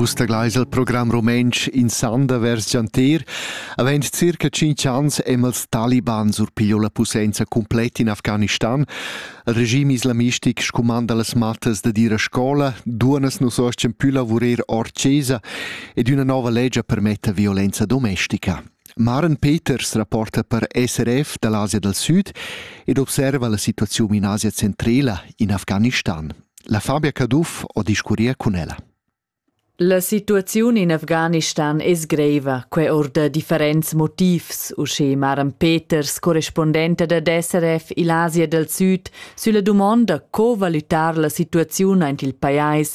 Vus tagleis al program rumentsch in sanda vers gianter. Avend circa 5 ans hem els talibans urpiglio la posenza completa in Afghanistan. Il regime islamistic scumanda las mattas da dir a scola, duonas nos ostien più lavurer or cesa ed una nova legge permetta violenza domestica. Maren Peters rapporta per SRF da l'Asia dal Sud ed observa la situaziun in Asia centrala, in Afghanistan. La Fabia Caduff ho discurria cun ella. La situaziun in Afghanistan es greiva, quai or da differents motivs, usche Maren Peters, correspondenta da SRF il Asia dal Süd, sülla dumonda co valutar la situaziun aint il pajais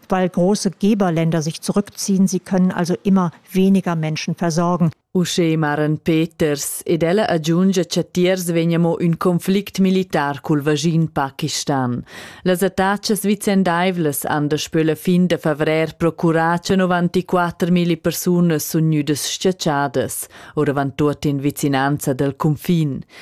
weil große Geberländer sich zurückziehen, sie können also immer weniger Menschen versorgen. Usche Maren Peters ed ella agiungia cha tiers vegna mo ün conflict militar cul vaschin Pakistan. Las attachas vicendaivlas han daspö la fin da favrer procurà cha 94.000 persunas sun gnüdas schachadas, oravant tuot in vicinanza dal cunfin.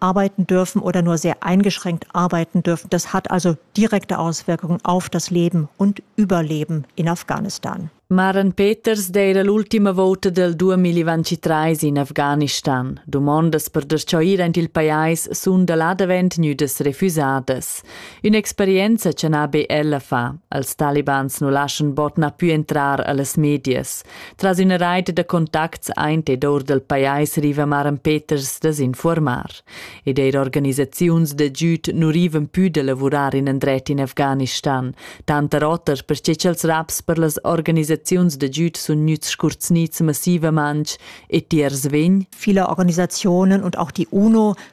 arbeiten dürfen oder nur sehr eingeschränkt arbeiten dürfen. Das hat also direkte Auswirkungen auf das Leben und Überleben in Afghanistan. Maren Peters d'eira l'ultima vouta del 2023 in Afghanistan. Dumondas per deschoir aint il pajais sun da là davent gnüdas refüsadas. Ün'experienza cha na be ella fa. Als Talibans nu laschan bot na pü entrar a las medias. Tras üna reit da contacts aint ed our dal pajais riva Maran Peters da s'infuormar. Ed eir organisaziuns da giüd nu rivan pü da lavurar in andret in Afghanistan, tanter oter perche cha'ls raps per las organisaziuns da giüd sun gnüts scurzgnits massivamantsch e tiers vegn. Viele Organisationen und auch die UNO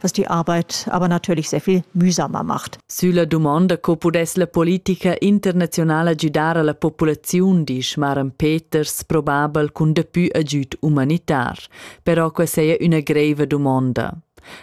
dass die Arbeit aber natürlich sehr viel mühsamer macht. Sülla dumonda co pudess la politica internazionala gidar alla populaziun, disch Maran Peters, probabel cun dapü agüd humanitar. Però questa è una greve domanda.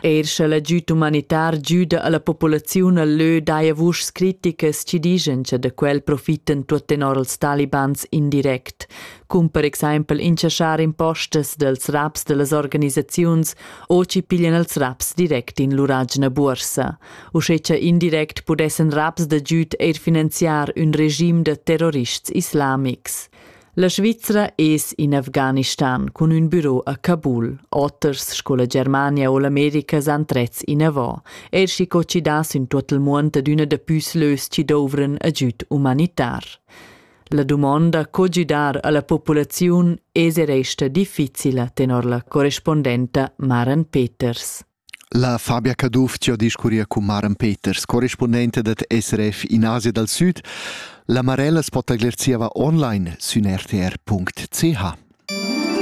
Er sche l'agüd humanitar giuda alla populaziun al lö daja vuschs criticas ci digen che de quel profiten tuot tenor als talibans indirect, cum per exempel inchaschar impostas dels raps dellas organisaziuns o chi piglian els raps direct in lur agina buorsa, uschè cha indirect pudessan raps da giüd eir finanziar ün regim da terrorists islamics. La Svizra es in Afghanistan cun ün büro a Kabul. Oters sco la Germania o l'America s'han trets inavò, eir schi co chi das in tuot il muond ad üna da püs lös chi douvran agüd umanitar. La dumonda co gidar alla populaziun es e resta difficila tenor la correspondenta Maren Peters. La Fabia Caduff ci ha discurria con Maren Peters, correspondente dat SRF in Asia dal Sud. La Marella spotaglier zieva online sün rtr.ch.